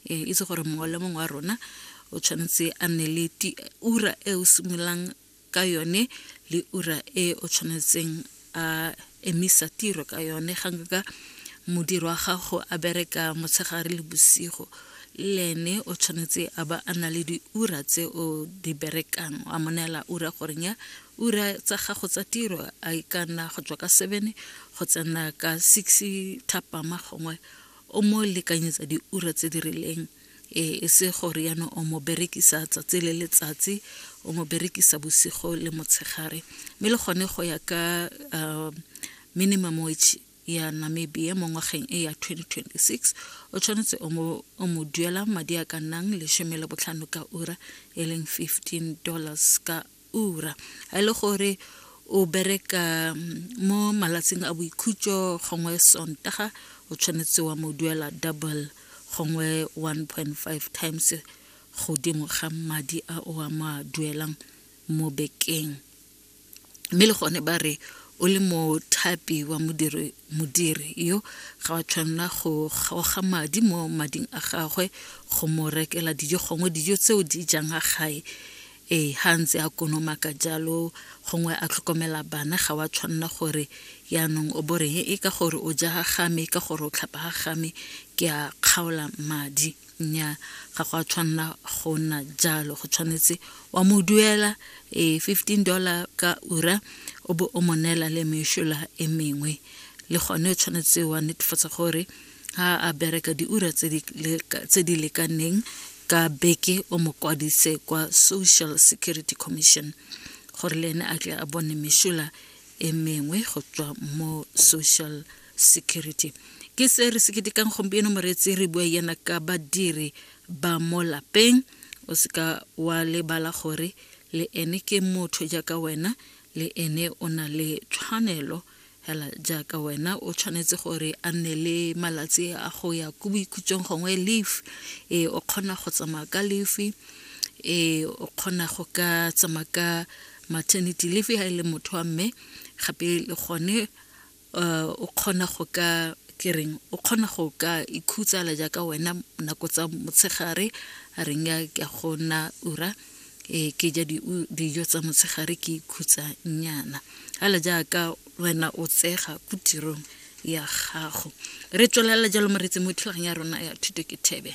e itse gore mongwe le mongwe wa rona o tshwanetse a nne le ura e o simololang ka yone le ura e o tshwanetseng a emisa tiro ka yone ga nka modiro wa gago a bereka motshegare le bosigo le ene o tshwanetse a ba a na le diura tse o di berekang a monela ura goreng ya ura tsa gago tsa tiro a e ka nna go tswa ka seven go tsena ka six thapama gongwe o mo lekanyetsa diura tse di rileng e, e se gore yana o mo berekisa tsatsi le letsatsi o mo berekisa bosigo le motshegare mme le gone go ya ka um, minimum wage ya namibia mo ngwageng e ya 2026 o tshwanetse o mo duela madi a ka nnang lesome le botlhano ka ura e leng 15 dollars ka ura a le gore o bereka mm, mo malatsing a boikhutso gongwe sontaga o tshwanetse wa mo duela double gongwe 1.5 times godimo ga madi a o a mo a duelang mo bekeng mme le gone ba re o le mothapi wa modiri modiri yo ga wa tshwanela go kgaoga madi mo mading a gagwe go mo rekela dijo gongwe dijo tseo di jang a gae Ee, ga ntse a konoma ka jalo, gongwe a tlhokomela bana, ga wa tshwanela gore yaanong o bo reng e ka gore o ja ga game, ka gore o tlhapa ga game, ke a kgaola madi. Nnyaa, ga go a tshwanela go nna jalo. Go tshwanetse wa mo duela ee fifteen dollar ka ura, o bo o mo neela le mešola e mengwe. Le gone o tshwanetse wa netefatsa gore a a bereka diura tse di lekaneng ka beke o mo kwadise kwa social security commission gore le ene a tle a bone mešola e mengwe go tswa mo social security ke se re se ketekang gompieno moreetsi re bua yena ka badiri ba mo lapeng o seka wa lebala gore le ene ke motho jaaka wena le ene o na le tshwanelo Hela jaaka wena o tshwanetse gore a nne le malatsi a go ya ko boikhutsong gongwe leafe ee o kgona go tsamaya ka leafe ee o kgona go ka tsamaya ka maternity leafe ga e le motho wa mme gape le gone eh, o kgona go ka kereng o kgona go ka ikhutsa la jaaka wena nako tsa motshegare a reng ya go nna ura e ke ja dijo tsa motshegare ke ikhutsa nyana ala jaaka wena o tsega ko tirong ya gago re tswelela jalo moretsi mo thulagang ya rona ya thuto ke thebe